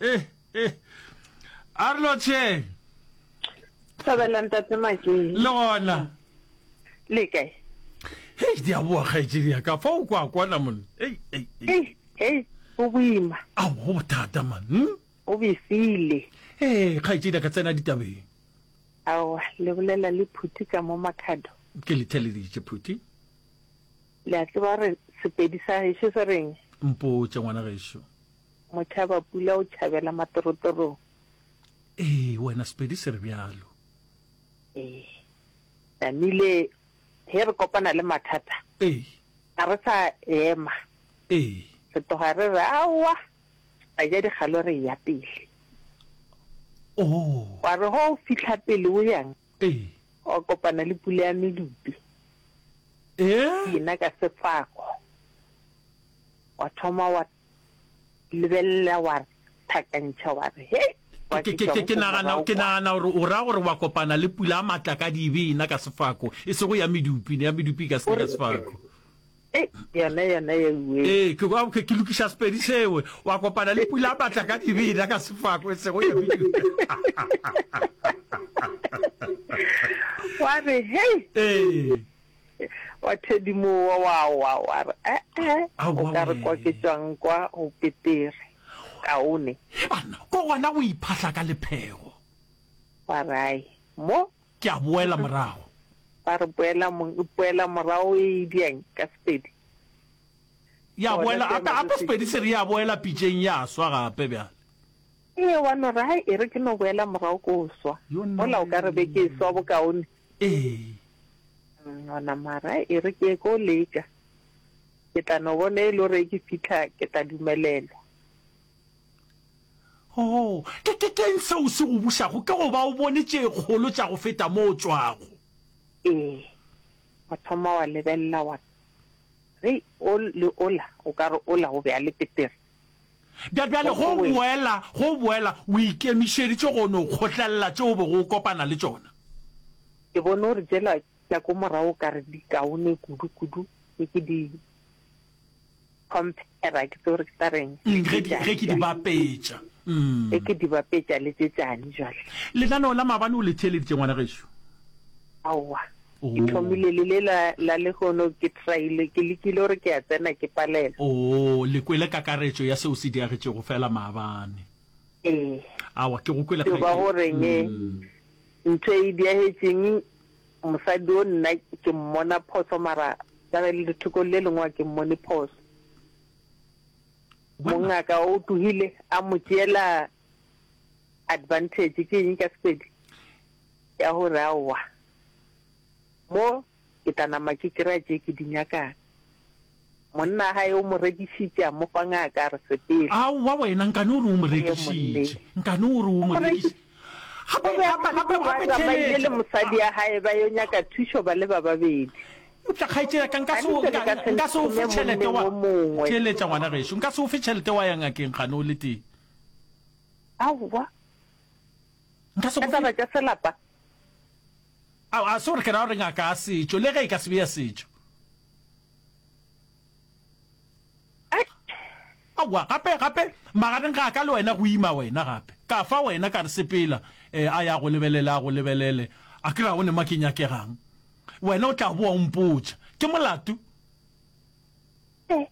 Eh, eh. A re lotšheng. Thabela ntate Makeng. Le gona. Le kae? Hei, di a boa kgaetšedi ya ka. Fa o kwa kwana monna. Ei, ei, ei. Hei, hei, go boima. A go bothata man. Hmm? O besile. Eh, kgaetšedi ya ka tsena ditabeng. Aowa, le bolela le phuti ka mo makhado. Ke le theleditše phuti. Le a tseba re sepedi sa gešo se reng? Mpotše ngwana gešo. Motšhabapula o tšhabela matorotorong. Ee, wena Sepedi se re bjalo. Ee, namile ge re kopana le mathata. Ee. Ga re sa ema. Ee. Re tloga re re aowa ra ja dikgalo re ya pele. Oo. Wa re ge o fitlha pele o yang. Ee. Wa kopana le pula ya medupi. Ee. Ke ena ka sefako. Wa thoma wa lebelela wa re thakantšha wa re he ke nagana ke nagana gore o ra gore wa kopana le pula a matla ka dibe ena ka sefako e sego ya medupi ne ya medupi e ka se ka sefako eh, yona yona ya uwe eh ke kwa ke lokisha sepedi sewe wa kopana le pula a matla ka dibe ena ka sefako e sego ya medupi wa re hey eh wa thedimo wa wa wa wa re ee o ka re kwa ke tswang kwa go petere kaone he banna ko gona go iphahla ka lephego wa rai mo ke a boela morago ba re boela boela morago e diang ka sepedi ya boela ape ape sepedi se re ya boela pitšeng ya swa gape bjale ee wa no re hai e re ke no boela morago ko swa mola o ka re be ke swa bokaone Ee. Gona mara e re ke ko leka ke tla no bona e le gore ke fitlha ke tla dumelelwa. Oh, ke ke keng se o se go bušago ke go ba o bone tše kgolo tša go feta mo o tšwago. Ee. Wa thoma wa lebelela wa re o le ola o ka re ola o be a le petere. Bja bjale go boela, go boela, o ikemišeditše go no kgotlelela tšeo o bego o kopana le tšona. Ke bone gore tšela tša ko morago o ka re di kaone kudu, kudu, ge ke di compare, ke tsebe gore ke tla reng, Eng, ge di, ge ke di bapetša. Ge ke di bapetša le tše tšane bjale. Lenaneo la maabane o le theeleditše, ngwana gešo? Aowa. Ke thomile le le la, la lehono, ke traile, ke lekile gore ke a tsena, ke palela. Oo, le kwele kakaretšo ya seo se diagetšego feela maabane? Ee. Awa, ke go kwele Yo ba kgaetšedi. go reng, e, Mm. ntho e e diagetšeng, mosadi o nna ke mmona phoso, mara ka le lethokong le lengwe ga ke mmone phoso. Bona. Mongaka o tlohile a mo tšeela Advantage ke eng ka Sepedi? Ya gore aowa mo ke tla nama ke kry-a tše ke di nyakang. Monna wa gae o mo rekišitše a mo fa ngaka a re sepela. Aowa wena nkane o re o mo rekišitše, nkane o re o mo rekiši. Gape, gape, gape, gape theletša. O be a tsamaile le mosadi wa gae ba yo nyaka thušo ba le ba babedi. Eupša kgaetšedi ya ka, nka se o, nka, nka se o fe tšhelete wa, theletša ngwana gešo, nka se o fe tšhelete wa ya ngakeng gane o le tee. Aowa. Nka se go fe. Ka taba tša selapa. Ao, a se gore ke ra gore ngaka ya setšo, le ge e ka se be ya setšo. Aowa, gape, gape, magareng ga ka le wena go ima wena gape. Ka fa wena ka re sepela, eh, a ya go lebelele, a go lebelele. A ke re a one ma ke nyakegang. Wena o tla boa o mpotša. Ke molato.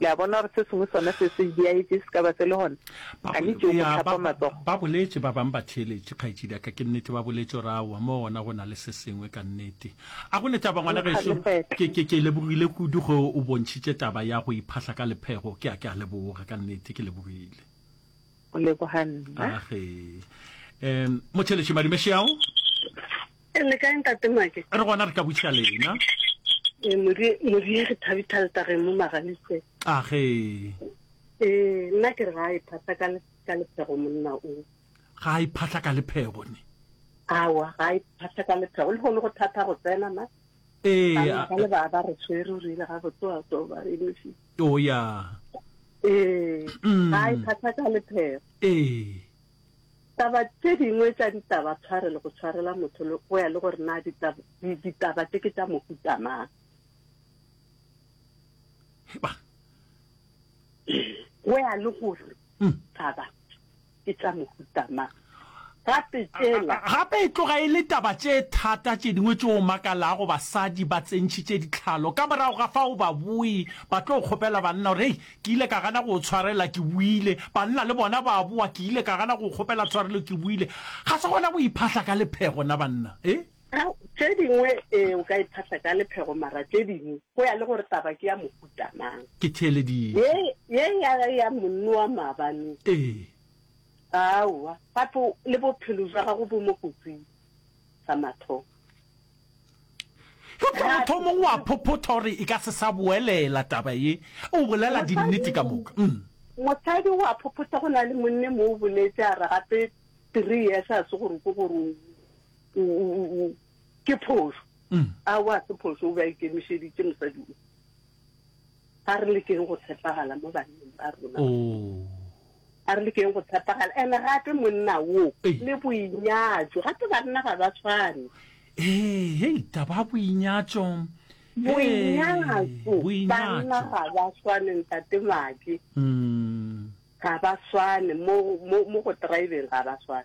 Le a bona gore se sengwe sona se se diaetše se ka ba se le gona? A ne tšeo go tlhapa matsogo. Ba boletše ba bang ba theeletše, Kgaetšedi a ka, ke nnete ba boletše gore aowa, mo gona go na le se sengwe ka nnete. A go le taba, ngwana gešo? Ke, ke, ke lebogile kudu ge o bontšhitše taba ya go iphahla ka lephego. Ke a, ke a leboga, ka nnete ke lebogile. O leboga nna. Age. Um, motheeletše Madume Xiao. E le kae ntate Make? Re gona re ka butša lena. E modie modie re thabi thalta re mo magalise. Age. E nna ke re ga e phata ka le ka le phego monna o. Ga e phata ka le phego ne. Awa ga e phata ka le phego le gone go thata go tsena ma. E a ka le ba ba re tshwere o rile ga go tsoa tso ba e misi. O ya. E ga e phata ka le phego. E Taba tše dingwe tša ditaba tshwarelo go tshwarela motho le go ya le gore na ditaba, di- ditaba tše ke tša mohuta mang. Heba. Go ya le gore Mm. taba ke tša mohuta mang. Gape tšela gape e tloga e le taba tše thata tše dingwe tše o makalago basadi ba tsentšhitše ditlhalo ka morago ga fa o ba boe ba tlo kgopela banna gore hei Ke ile ka gana go o tshwarela, ke buile. Banna le bona ba a boa, ke ile ka gana go o kgopela tshwarelo, ke buile. Ga se gona go iphahla ka lephego, na banna? Ee. Ao, tše dingwe, ee, o ka iphahla ka lephego, mara tše dingwe, go ya le gore taba ke ya mohuta mang. Ke theeleditše. Ye, ye ya, ya monno wa maabane. Ee. Aowa, gape le bophelo bja gago bo mo kotsing. sa mathomo. Eupša mothomong o a phophotha o re e ka se sa boelela taba ye, o bolela dinnete ka moka. Mosadi o a phophotha go na le monne mo o boletše a re gape three years a se gore ke gore ke phošo. A wa se phošo o be a ikemišeditše mosadi o. Ga re lekeng go tshepagala mo banneng ba rona. A re lekeng go tshepagala, and gape monna wo Ei. le boinyatšo, gape banna ga ba tshwane. Ee, hei, taba ya boinyatšo. Ee, Boinyatšo, banna boinyatšo. ga ba tshwane, ntate Maki, Mm. ga ba tshwane mo mo mo go driveng, ga ba tshwane.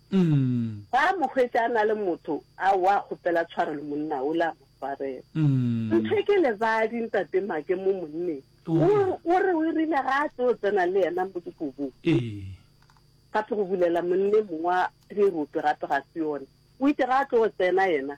Umm. Fa a mo hwetša a na le motho, a wa a kgopela tshwarelo monna o le a mo swarela. Umm. Ntho ke lebadi ntate Make mo monneng. O re. O re o e rile ga a tlo tsena le yena mo dikobong. Ee. Gape go bulela monna e mongwe wa Therope gape ga se yona. O itše ga a tlo tsena yena.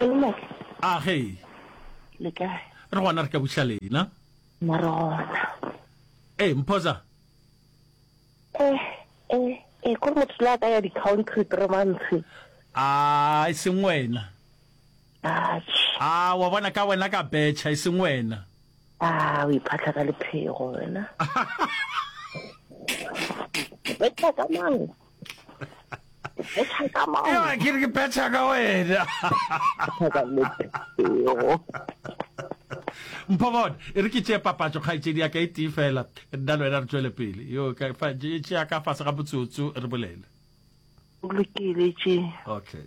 Leloko. A ge. Le kae? Re gona re ka buša lena. Na re gona. Ee, Mphoza. Eh, eh, eh, kore motho la ka ya di-country three months. A, e seng wena. Atjhe. A, wa bona ka wena ka betšha, e seng wena. A, o iphatla ka lephego wena. Betšha ka mang? Ewa ke re ke phetha ka wena. Mpho bona, e re ke tšee papatšo kgaetšedi ya ka e tee fela, nna le wena re tšwele pele. Yo, e tšea ka fase ga motsotso re bolele. Lokile tše. Okay.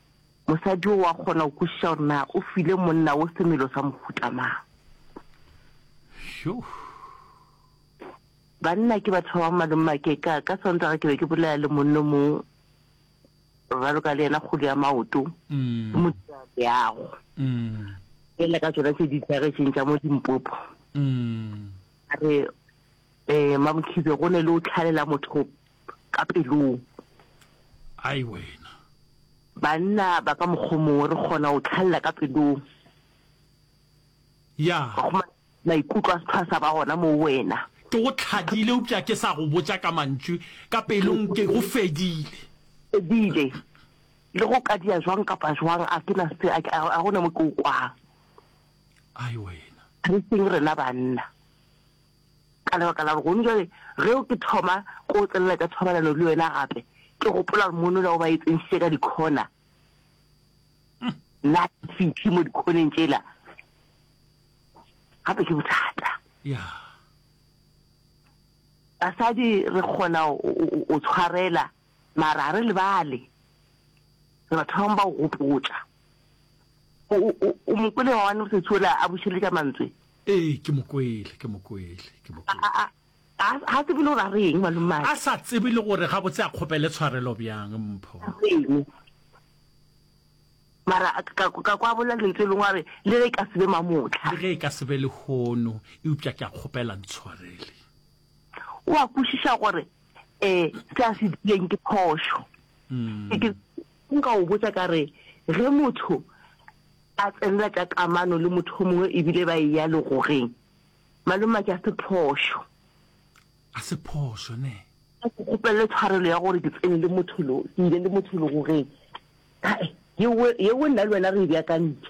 Mosadi wo wa kgona go kwešiša gore na o file monna wo semelo sa mohuta mang. Yoh. Banna ke batho ba ba maleng makeka. Ka Sontaga ke be ke bolela le monno mong raloka le yena kgolo ya maoto ke mo dira leago fela ka tsona tse di tlagetšeng tša mo dimpopo a re um mamokhibe go ne le o tlhalela motho ka pelong. Ai wena. Banna ba ka mokgwa o mongwe re kgona go tlhalela ka pelong. Ya. Wa kgona maikutlo a setho a sa ba gona mo wena. Ke go tlhadile eupša ke sa go botša ka mantšu, ka pelong ke go fedile. Fedile. Le go ka dia jwang kapa jwang a ke na se a ga gona mo ke o kwang. Ai wena. Re seng rena banna. Ka lebaka la gore gone jwale ge ke thoma ko tselela tša thobalano le wena gape, ke gopola gore mono la o ba e tsentšhitše ka dikhona, nna fithi mo dikhoneng tšela gape ke bothata. Yeah. Basadi re kgona o tshwarela mara ga re lebale re batho bangwe ba o gopotsa o mokole wa wane mosetshola a bušeletša mantswe Ee, ke mo kwele, ke mo kwele, ke mo A, kwele. a, a, a, ga a tsebe le gore a re eng malomagwe. A sa tsebe le gore gabotse a kgopele tshwarelo bjang, Mpho. A re eng. Mara a, ka, ka kwa bolela lentso e lengwe a re, le ge e ka se be mamotlha. Le ge e ka se be lehono, eupša ke a kgopela ntshwarele. O a kwešiša gore, um, se a se dirileng ke phošo. Ke, ke, Nka o botša ka re, Ge motho a tsenela tša kamano le motho o mongwe e bile ba eya legogeng, malomatša a se phošo. A se phošo, ne? A ke kgopelele tshwarelo ya gore ke tsene le motho lo, ke ile le motho legogeng. Yeo, yeo nna le wena re e beakantše.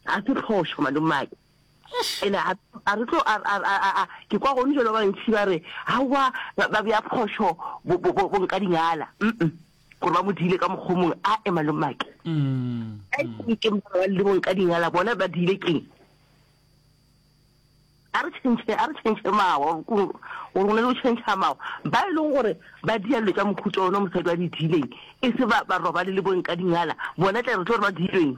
A se phošo, malomatša. Ene a, a re tlo, a, a, a, a, ke kwa gone jalo ba bantši ba re, Aowa, ba, ba bea phošo bo, bo, bo, bonkadingala. Mm-mm. Gore ba mo diile ka mokgwa o mongwe, a e malomake. A e se ke ba le bonkadingala, bona ba diile keng? A re tšhentšhe, a re tšhentšhe mawa, gore go na le go tšhentšha mawa. Ba e leng gore ba dia dilo tša mohuta ona mosadi wa di diileng, e se ba, ba robale le bonkadingala, bona tle re tlo re ba diilweng.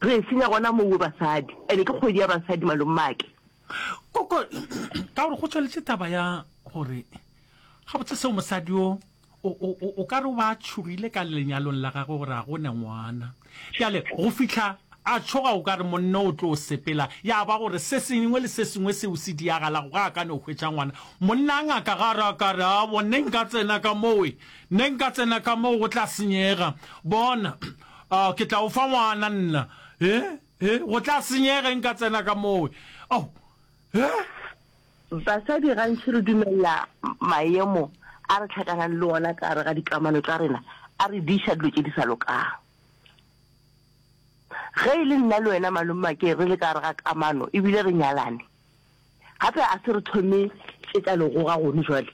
Re e senya gona mo we basadi ene ke kgwedi ya basadi malomake. Koko ka gore go tšweletše taba ya gore gabotse seo mosadi yo o ka re o ba a tšhogile ka lenyalong la gagwe gore a gone ngwana bjale go fihla a tšhoga o ka re monno o tlo sepela ya ba gore se sengwe le se sengwe seo se diagalago ga a ka no hwetša ngwana monna a ngaka ga ra ka re a bonneng ka tsena ka mowe Ne nka tsena ka moo go tla senyega. Bona, oh, ke tla o fa ngwana nna. He, he, go tla senyega ge nka tsena ka moo. Oh, he. Basadi gantši re dumelela maemo a re hlakanang le ona ka gare ga dikamano tša rena a re diša dilo tše di sa lokago. Ge e le nna le wena Malommakeng re le ka gare ga kamano e bile re nyalane, gape a se re thome tše tša legoga gone jwale?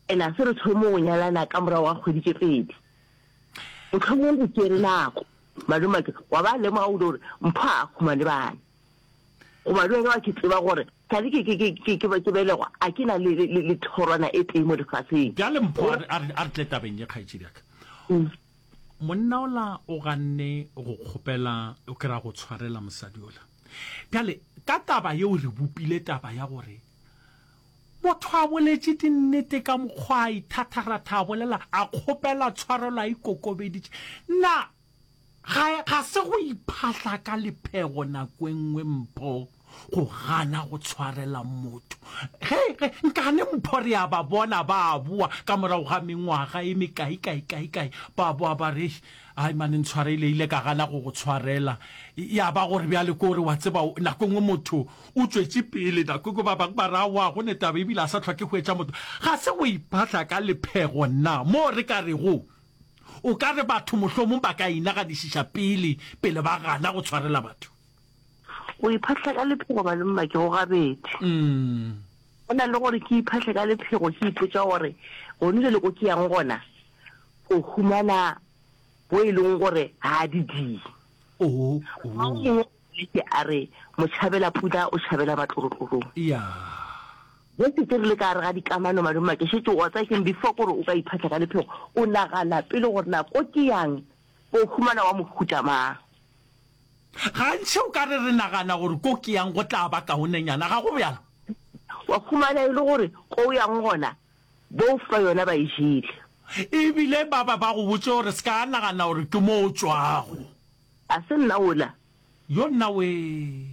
and a se re thome go nyalana ka morago ga kgwedi tše pedi. Mohlomong go tšere nako malomake wa ba lemoga kudu gore Mpho a khuma le bana. Goba le wena wa ke tseba gore sa le ke ke ke ke ke ba ke belegwa a ke na le le le thorwana e tee mo lefaseng. Bjale Mpho a re a re a re tle tabeng ye kgaetšedi ya ka. Monna ola o ganne go kgopela o kry-a go tshwarela mosadi ola. Bjale ka taba yeo re bopile taba ya gore Motho a boletše dinnete ka mokgwa a ithatharatha a bolela, a kgopela tshwarelo a ikokobeditše. Na ga, ga se go iphahla ka lephego nako e nngwe, mpho, go gana go tshwarela motho? Ge, ge, nkane mpho re a ba bona ba a boa ka morago ga mengwaga e mekae, kae, kae, kae, ba boa ba re, Eish, ai mane ntshwareile, ile ka gana go go tshwarela. Ya ba gore bjale ke gore, wa tseba, nako e nngwe motho o tšwetše pele nako eko ba bangwe ba re aowa go ne taba ebile a sa tlhoke go etša motho ga se go iphahla ka lephego nna moo re ka rego o ka re batho mohlomong ba ka inaganišiša pele pele ba gana go tshwarela batho go iphahla ka lephego malomma ke go gabedi mm. go na le gore ke iphahle ka lephego ke ipotsa gore gone jale ko ke yang gona o humana bo e leng gore ga di die oh, oh. Leke a re, Motšhabela-pula o tšhabela matlorotlorong. Eya. Jesse, ke rile ka gare ga dikamano, Malome, ke šetše o otla keng before ke gore o ka iphatla ka lephego? O nagana pele gore na ko ke yang ko humana wa mohuta mang? Gantši o ka re re nagana gore ko ke yang go tla ba kaonenyana, ga go bjalo? Wa humana e le gore ko o yang gona bof ba yona ba e jele. Ebile ba ba ba go botše gore se ka nagana gore ke mo o tšwago. A se nna wola? Yo nna wee.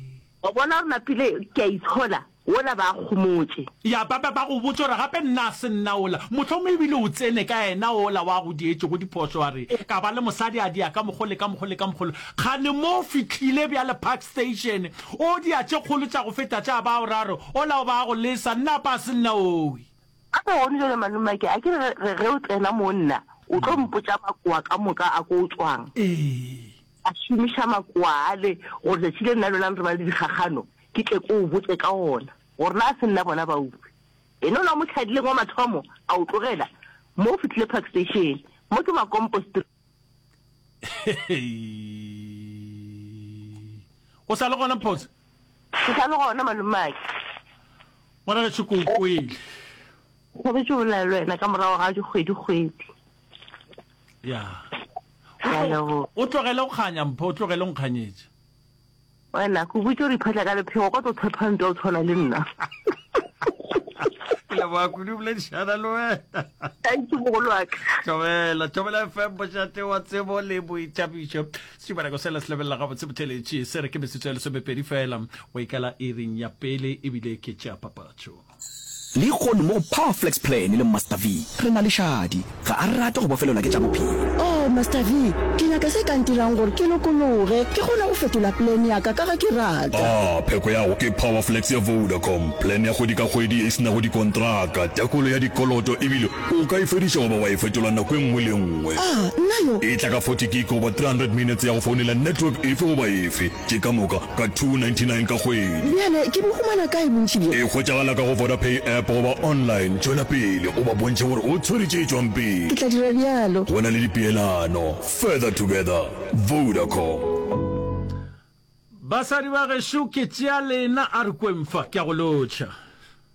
O bona gore napile ke a itshola, wola ba kgomotše. Ya ba ba ba go botša gore gape nna a se nna wola. Mohlomongwe e bile o tsene ka yena wola wa go dietšego diphošo a re ka ba le mosadi a dia ka mokgo le ka mokgo le ka mokgo le kgane mo o fihlile bjale Park Station o dia tše kgolo tša go feta tša bao ra re wola o ba go lesa nna apa a se nna owi. Gape gone jale, malomake, a ke re, re ge o tsena mo nna, o tlo mpotša makowa ka moka a ko o tšwang. Ee. A šomiša makowa ale, gore tšatši le nna le wena re ba le dikgakgano, ke tle ke o botše ka ona, gore na a se nna bona bautswi. Yena o la mo tlhadileng wa mathomo, a o tlogela, mo o fihlile Park Station. Mo ke Makompo Street. o sa le gona phoso ke sa le gona malumake ngwana ka tšhoko o kwele thabetse o bolela le wena ka morago ga dikgwedi-kgwedi ya o tlogele go kganya mpho o tlogele nkganyetša Wena, ke go botša gore iphatla ka lephego, kwa tlo thepha ntwa o tshwana le nna. Ke leboga kudu boledišana le wena. Thank you mogolo wa ka. Thobela, Thobela FM bošate wa tsebo le boithabišo. Setumanako sela se lebelela gabotse botheletši se re ke metsotso ya lesomepedi fela go ikala iring ya pele ebile ke tšea papatšo. Lehono mo go Power Flex Plan le Master V re na le šadi. Ga a rate go bofelelwa ke tša bophelo. Oh, Master V, ke nyaka se ka ntirang gore ke lokologe, ke kgone go fetola plan ya ka ka ga ke rata. Ah, pheko ya go ke Power Flex ya Vodacom, plan ya kgwedi ka kgwedi e se nago dikontraka, tekolo ya dikoloto ebile o ka e fediša goba wa e fetola nako e nngwe le e nngwe. Ah, nna yo! E tla ka forty gig goba three hundred minutes ya go founela network efe goba efe. Ke ka moka ka 299 ka kgwedi. Bjale ke bo humana kae bontši bjo? E hwetšagala ka go Vodapay app goba online. Tšwela pele o ba bontšhe gore o tshwere tše tšwang pele. Ke tla dira bjalo. Go na le dipeelano. Further together. Vodacom. Basadi ba gešo ke tšea lena, a re kweng fa, ke a go lotšha.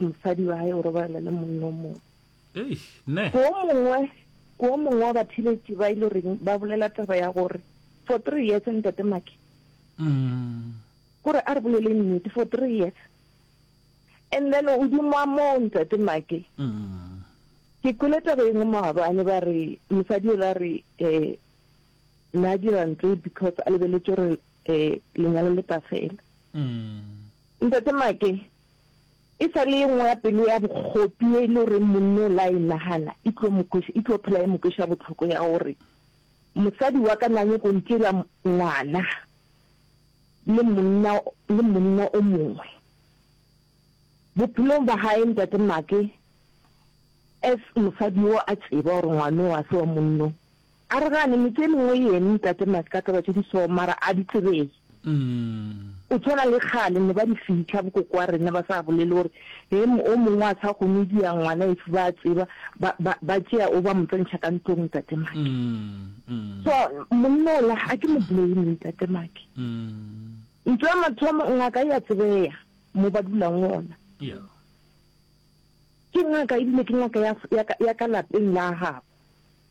mosadi wa hae o robalela le monna o mongwe Ei, ne. ko mongwe ko mongwe wa bathiletši ba ile reng ba bolela taba ya gore for three years ntate make Mm. kore a re bolele nnete for three years and then o dimoa moo ntate make Mm. ke kwele taba engwe maabane ba re mosadi o la re um na dira ntlo because a lebeletse gore um lenyalo le tla fela Mm. ntate make E sa le ye nngwe ya pelo ya bokgopi ye e le goreng monna o la e nagana e tlo mo kweša, e tlo phela e mo kweša bohloko ya gore mosadi wa ka na nyako ntšela ngwana le monna le monna o mongwe bophelong ba gae. Ntate Make as mosadi yo a tseba gore ngwana o a se wa monno A re gane me ke lengwe yene ntate Maska taba tše di so mara a di tsebege. O tshwana le kgale ne ba di fihla bo koko wa rena ba sa bolele gore he o mongwe a sa kgone di ya ngwana if ba tseba ba ba ba tšea o ba mo tsentšha ka ntlong ntate Make. So monnola a ke mo blame ntate Make. Ntho ya mathomo ngaka ya tsebeya mo ba dulang gona. Ke ngaka ebile ke ngaka ya ya ka lapeng la gabo.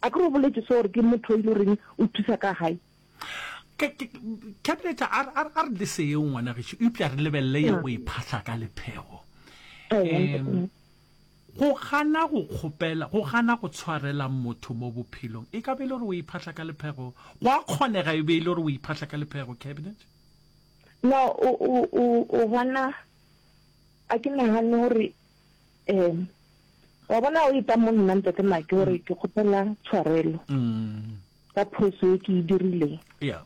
Akere o boletše so gore ke motho e le goreng o thusa ka gae. Ke, ke, Cabinet, a, a, a re le seyeo ngwana gešo, eupša re lebelele ya go e phahla ka lephego. Um, go gana go kgopela, go gana go tshwarela motho mo bophelong, e ka be e le gore o e phahla ka lephego? Go a kgonega e be e le gore o e phahla ka lephego, Cabinet? No, o, o, o, o bona, a ke nagane gore Ee. Wa bona o eta mo nna ntate Maki gore mm. ke kgopela tshwarelo mm. ka phoso e ke e dirileng. Yeah.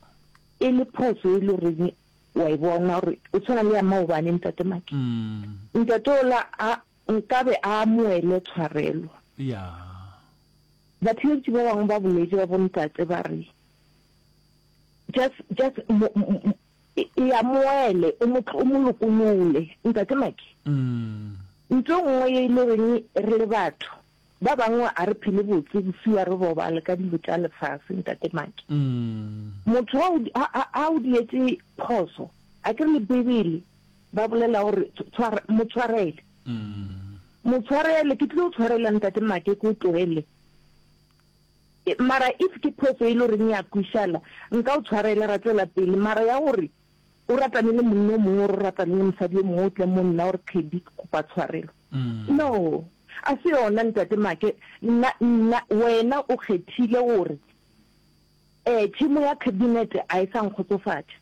E le phoso e le reng wa e bona gore o tshwana le ya maobane ntate Maki. Mm. Ntate ola a nkabe a amoele tshwarelo. Yeah. Batheetsi ba bangwe ba boletse ba bontate ba re just just E, e amoele, o mo, o mo lokolole. Ntate Maki, ntho nngwe ye e le goreng re le batho ba bangwe a re phele botse bosiu a re robale ka dilo tša lefase, Ntate Maki. Motho a o, a, a, a o dietse phoso, a ke re le Bibele ba bolela gore tshware, mo tshwarele. Mo tshwarele, ke tlile go tshwarela Ntate Maki, ke o tlogele. Mara if ke phoso e le goreng ya kwishana, nka o tshwarela, ra tšwela pele. Mara ya gore o ratane le monna o mongwe or o ratane le mosadi yo mongwe o tle mo nna o re Teddy ke kopa tshwarelo, no, a se yona Ntate Make. Nna, nna, wena o kgethile gore um tšhemo ya cabinet ga e sa nkgotsofatša,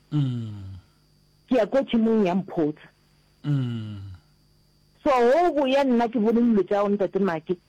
ke ya ko tšhemong ya Mphotsa. So, go boya nna ke bone dilo tša gago Ntate Make.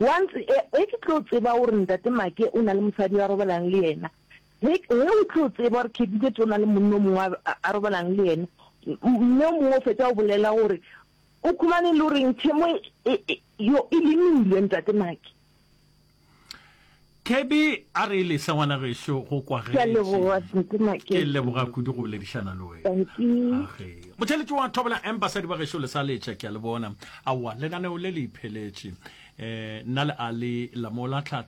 Once e, ge ke tlo tseba gore Ntate Make o na le mosadi yo a robalang le yena, ge, ge o tlo tseba gore Ketikete o na le monna o mongwe a, a robalang le yena, mme o mongwe o fetša go bolela gore, O khumane le goreng, tšhemo e, e, e, yo, e lemilwe, Ntate Make. Thebe a re lesa ngwana gešo go kwagetše. Ke a leboga Sete Maketše. Ke leboga kudu go boledišana le wena. Dankie. Motšheletši wa Thobela Em basadi ba gešo lesa letša ke a le bona. Aowa lenaneo le le ipheletše. Nna le a le la mola tlhahla.